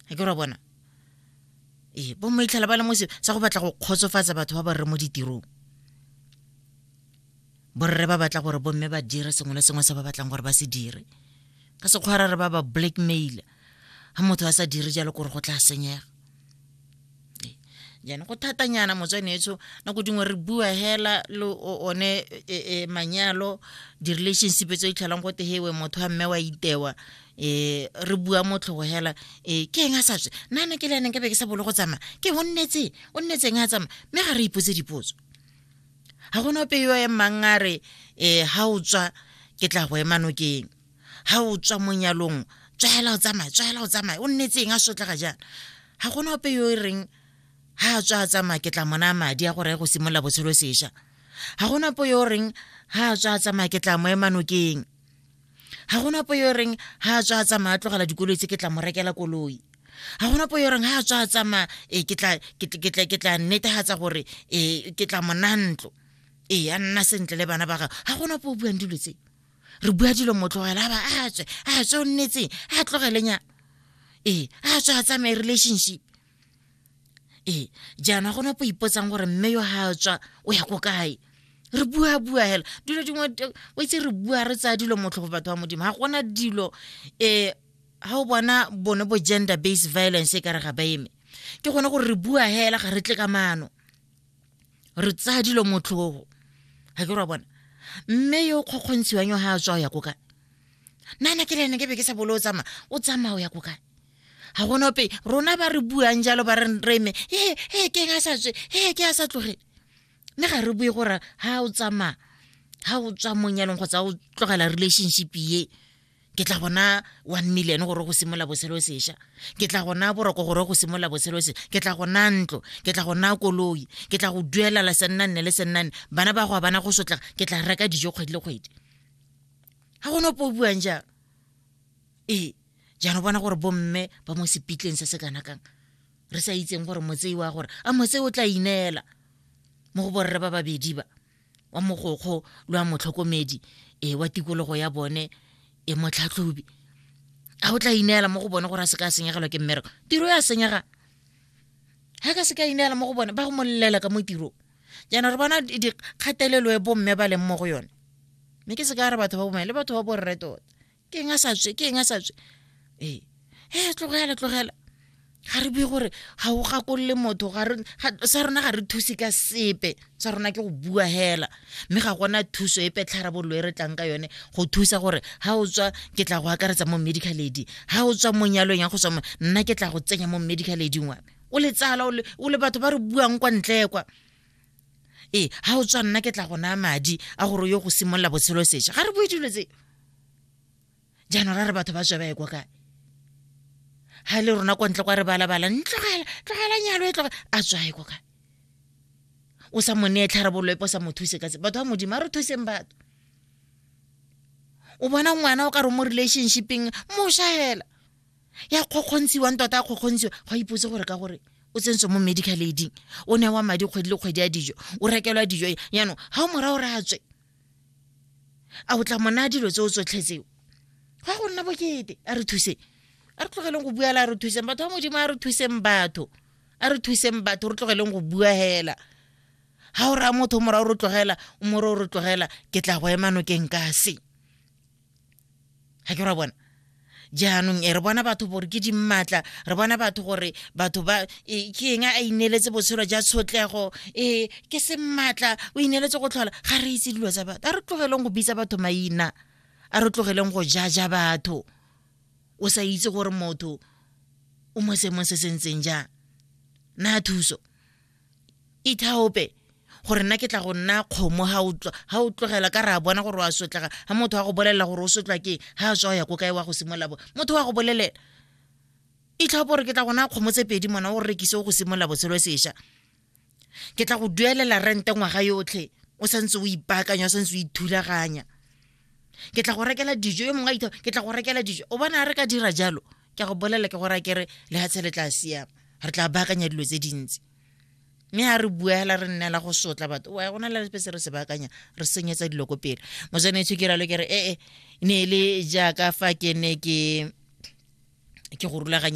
a ke ra bona ee bo maitlhela ba le mo sa go batla go kgotsofatsa batho ba ba rre mo ditirong borre ba batla gore bomme ba dire sengwe le sengwe se ba batlang gore ba se dire ka sekgwara re ba ba blackmail ga motho a sa dire jalo gore go tla senyega jaanong go thatanyana motswanetso nako dingwe re bua hela le one e, e, manyalo di-relationship tse di tlhelang go tegewe motho wa mme wa itewa um re bua motlhogo hela um ke eng a sa tswe nana ke le ene nkabe ke sa bolo go tsamaya ke o nnetseng o nnetseng a tsamaya mme ga re ipotse dipotso ga gona ope yo emang a re um ga o tswa ke tla go emanokeng ga o tswa mo nyalong tswaela o tsamaya tswaela o tsamaya o nnetseng a sotlega jaana ga gona ope yo e reng ga a tswa a tsamaya ke tla mona madi a gore go simolola botshelo sesha ga gona ope yo o reng ga a tswa a tsamaya ke tla mo emanokeng ga gona ope yo o reng ga a tswa a tsamaya a tlogela dikoloi tse ke tla mo rekela koloi ga gona po yo reng ga a tswa a tsamaya e ke tla netegatsa gore e ke tla monantlo ee a nna sentle le bana ba gagwe ga gona po o buang dilo tse re bua dilo motlogela a ba a tswe a tswe o nnetseng a tlogelenyana ee a tswe a tsamaye relationship ee jaana gona po ipotsang gore mme yo ga a tswa o ya ko kae re bua bua hela dilo dingwe o itse re bua re tsaya dilo motlhogo batho ba modimo ga gona dilo um ga o bona bone bo gender based violence e ka re ga ba eme ke gone gore re bua hela ga re tle ka maano re tsaya dilo motlhogo ga ke ra bona mme yo o kgokgontshiwang yo ga a tswa o ya ko kae nana ke lene ke be ke sa bolo o tsamaya o tsamaya o ya ko kae ga gona ope rona ba re buang jalo ba re reme ee ee ke a sa tswe ee ke a sa tloge mme ga re bue gore ga o tsamaya ga o tswa monyalong kgotsa o tlogela relationship ye ke tla bona one million gore go simolola botshelo sesha ke tla gona boroko gore go simolola botshelo se ke tla go naya ntlo ke tla go naya koloi ke tla go duelela sennanne le sennanne bana ba go a bana go sotla ke tla reka dijo kgwedi le kgwedi ga gone opo o buang jang ee jaanong bona gore bomme ba mo sepitleng se se kana kang re sa itseng gore motsei wa gore a motsei o tla ineela mo go borre ba babedi ba wa mogokgo le wa motlhokomedi e wa tikologo ya bone e motlhatlhobi a o tla ineela mo go bone gore a se ka senyegelwa ke mmereko tiro ya senyega ga ka se ka ineela mo go bone ba go molelela ka mo tirong jaana re bona dikgatelelo e bomme ba leng mo go yone mme ke se ka re batho ba bomme le batho ba borre tota ke eng a sa tswe ke eng a sa tswe ee e tlogela tlogela ga re bue gore ga o gakolole motho sa rona ga re thuse ka sepe sa rona ke go bua hela mme ga gona thuso e petlharabololo e re tlang ka yone go thusa gore ga o tswa ke tla go akaretsa mo medical aid ga o tswa mo nyalong ya go tswa nna ke tla go tsenya mo medical aiding wa o le tsala o le batho ba re buang kwa ntle kwa ee ga o tswa nna ke tla go naya madi a gore o yo go simolola botshelo seša ga re bue dilo tse jaanong ra re batho ba tswa ba ye kwa kae ga e le rona kwa ntle kwa re balabala ntlogela tlogela nyalo e tloge a tswa ye kwa kae o sa moneye tlharabololo epo sa mo thuse ka se batho ba modimo a re thuseng batho o bona ngwana o ka re mo relationshipeng mo shaela ya kgokgontshiwang tota ya kgokgontshiwa go a ipotse gore ka gore o tsentswe mo medical aiding o ne wa madi kgwedi le kgwedi ya dijo o rekelwa dijo jaanong ga o morago re a tswe a o tla mona dilo tse o tsotlhe tseo ga go nna bokete a re thuseng a re tlogeleng go buela a re thuseng batho ba modimo a re thuseng batho a re thuseng batho re tlogeleng go bua hela ga o raya motho morago re tlogela o more o re tlogela ke tla go ema nokeng ka se ga ke ra bona jaanong e re bona batho gore ke dimmatla re bona batho gore batho ba e, ke eng a ineeletse botshelo ja tshotlego e ke semmatla o ineeletse go tlhola ga re itse dilo tsa batho a re tlogeleng go bitsa batho maina a re tlogeleng go jaja batho o sa itse gore motho o mo seemong se se ntseng jang na thuso ithaope gore nna ke tla go nna kgomo ga o tlogela ka re a bona gore wa sotlega ga motho wa go bolelela gore o sotlwa ke ga a tswa ya ko kae wa go simolola bo motho wa go bolelela itlhaopo gore ke tla gona kgomo tse pedi mona o rekise o go simolola botshelo sesha ke tla go duelela rente ngwaga yotlhe o santse o ipaakanya o santse o ithulaganya ke tla go rekela dijo yo mongwe a itha ke tla go rekela dijo o bona re ka dira jalo ke go bolela ke gore a kere le ga tshele tla siama re tla baakanya dilo tse dintsi mme ga re bua fela re nnela go sotla batho wa go na le se re se baakanya re senyetsa dilo ko pele mojanetso ke ralo ke re ee ne e le jaaka fa ke ne ke ke go rulaganye